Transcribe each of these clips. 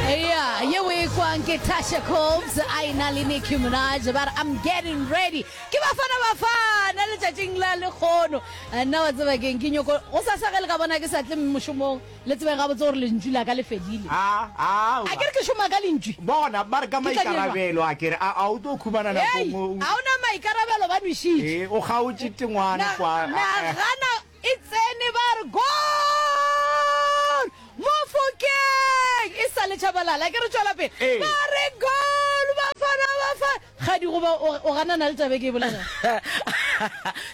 Yeah, ye o e kwang ke Tasha Cobbs a e na le Nicki Minaj ba re I'm getting ready ke bafana bafana letšatšing la lekgono Eh, nna wa tseba keng ke nyoko go sasa ge le ka bona ke sa tle mošomong le tsebeng gabotse gore lentšu la ka le fedile a a a ke re ke šoma ka lentšu bona ba re ka Ke tla dirwa. maikarabelo a kere a a o tlo khumana Hey, nakong o- ga o na maikarabelo ba nwešitše ee o kgaotše tengwana kwa Na- nagana E tsene ba re goal! Mofokeng! E sa le Tshabalala ke re tšwela pele. Ee. Ba re goal! Bafana Bafana! Kgadigoba o o ganana le taba e ke e bolelang.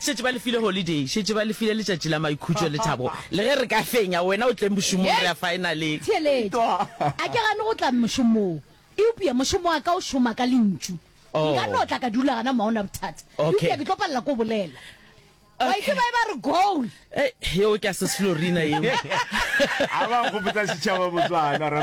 šetše ba lefile holiday šetše ba lefile letšatši la maikhutšo le thabo le ge re ka fenya wena o tleng mošomong re a finaleng Theeletša. A ke gane go tla mošomong. Eupša mošomo wa ka o šoma ka lentšu. Oh. Nka no tla ka dula gana mwa ona bothata. Okay. Eupša ke tlo palela ke o bolela. Ba itse ba e ba re goal. Eh, yeo ke a se slorina yeo. A ba go botsa sechaba botswana ra.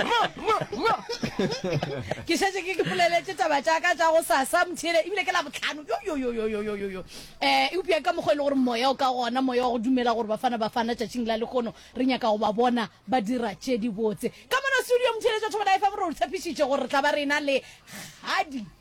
Ke šetše ke ke poleletse taba tša ka tša go sasa mthele ebile ke la botlhano. Yo yo yo yo yo yo yo yo. Eh, e upša ka mokgwa e le gore moya o ka gona, moya wa go dumela gore bafana bafana tšatšing la lekgono re nyaka go ba bona ba dira tše di botse. Ka mona studio mthele tša thobela FM re o tshepišitše gore re tla ba rena le kgadi.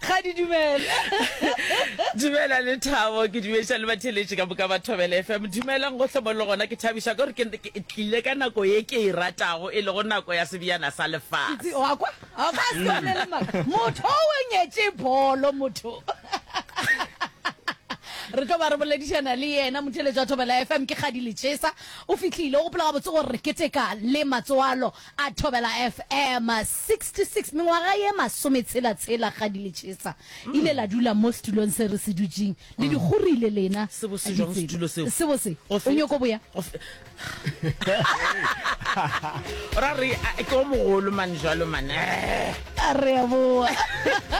ga di dumela dumela le thabo ke dumediša le batheletši ka moka ba thobela fm dumelang gohle mo le gona ke thabiša gore ke tlile ka nako ye ke e ratago e lego nako ya sebjana sa lefase motho o wenyetše bolo motho re tlo ba re boledišana le yena motheletša thobela fm ke kgadi lechesa o fitlhile o gopola gabotse gore re keteka le matsoalo A Thobela FM 66 mengwaga ye masometshela tshela ga di le tšhesa ile la dula mo setulong se re se dutšeng le di kgorile lena Sebo se jwang setulo seo? sebo se Go o fe- nyoko boya go fe- ra re a- ke o mogolo mane jalo mane re a boa